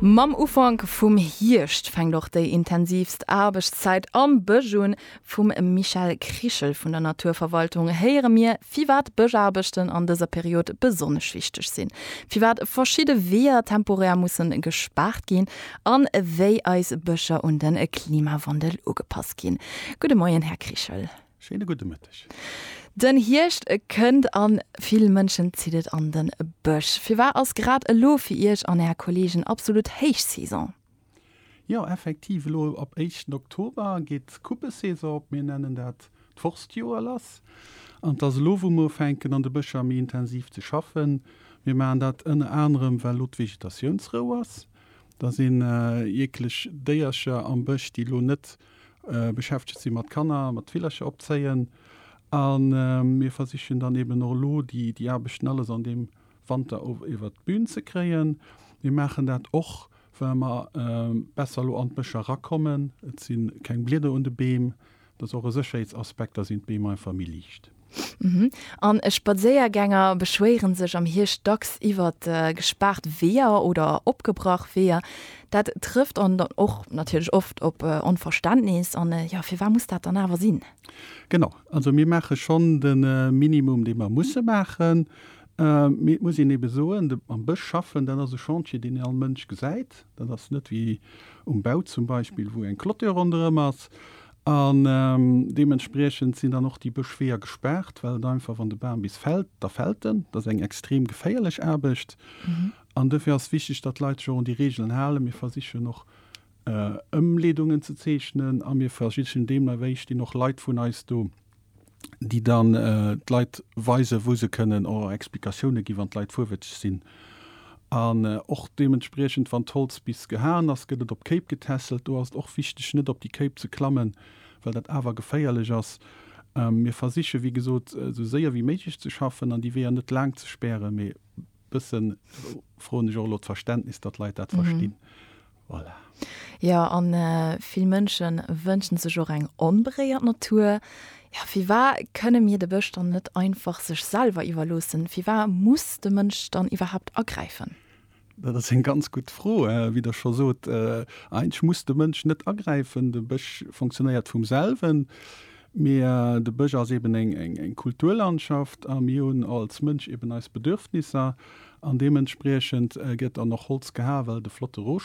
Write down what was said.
Mam Ufank vum Hierscht fänkt och déi intensivst Aarbechtszäit am Bësch un. Vum Michel Krichel vun der Naturverwaltung héiere mir, firwat Bëschaarbechten an dëser Period besonnesch wichteg sinn, firwat verschidde Weeër temporär musse gespaart ginn an wéi eis Bëscher un de Klimawandel ugepasst ginn. Gudde Moien, Här Krichel. Schéine gudde Mëtteg. Den Hierscht kënnt an vill Mënschen zitt et an den Bësch. Firwar ass grad elo fir Iech an Är Kollegen absolut Héichsaison? Jo effektiv, elo ab éischten Oktober geet d'Kuppesaison op. Mir nennen dat d'Forstjoer lass. An et ass elo wou mir ufänken an de Bëscher méi intensiv ze schaffen. Mir maachen dat ënner anerem well elo d'Vegetatiounsrou ass. Da sinn eekeleg Déiercher am Bësch déi elo net beschäftegt si mat Kanner, mat Villercher opzéien a mir versichen dann eben och elo déi Aarbechten alles an deem Wanter iwwert d'Bün ze kréien. Mir maachen dat och, well mer besser elo an d'Bëscher erakommen. Et si keng Blieder un de Beem, dat ass och e Sécherheetsaspekt, da sinn d'Beem einfach méi liicht. An Spadséiergänger beschwéiere sech am Hierscht dacks iwwer gespaart Weeër oder opgebrach Weeër. Dat trëfft dann och natierlech oft op Onverständnis. An jo, firwat muss dat dann awer sinn? Genau, also mir maache schonn de Minimum, dee mer musse maachen. Mee et muss een ebe soen, am Bësch schaffen, dat ass e Chantier, deen ee all Mënsch gesäit. Dat ass net wéi um Bau zum Beispill, wou eng Clôture ronderëm ass. An deementspriechend sinn dann och déi Bëschweeër gespaart, well et einfach, wann de Bam bis fält, da fält en. Dat ass eng extrem geféierlech Aarbecht. An dofir ass wichteg, datt d'Leit sech och un déi Reegelen halen. Mir versichen och Ëmleedungen ze zeechnen a mir versichen deemno wéi, stinn och Leit vun eis do, déi dann d'Leit weisen, wou se kënnen, oder Explikatioune ginn, wann d'Leit fuerwëtzeg sinn. An och deementspriechend, wann d'Holz bis gehaen ass, gëtt et op Kéip getässelt. Do ass et och wichteg, net op déi Kéip ze klammen, well dat awer geféierlech ass. Mir versiche wéi gesot, esou séier wéi méiglech ze schaffen an déi Weeër net laang ze spären. Mee e bësse froen ech och elo d'Verständnis, datt d'Leit dat verstinn. Voilà. Jo, a vill Mënsche wënschen sech och eng onberéiert Natur. Jo, firwar kënne mir de Bësch dann net einfach sech selwer iwwerloossen? Firwar muss de Mënsch dann iwwerhaapt agräifen? Dat ass eng ganz gutt Fro. Wéi Der scho sot, eigentlech muss de Mënsch net agräifen. De Bësch funktionéiert vum selwen. Mee de Bësch ass eben eng Kulturlandschaft a mir hunn als Mënsch eben eis Bedürfnisser an deementspriechend gëtt dann och Holz gehae well et e flotte Rohstoff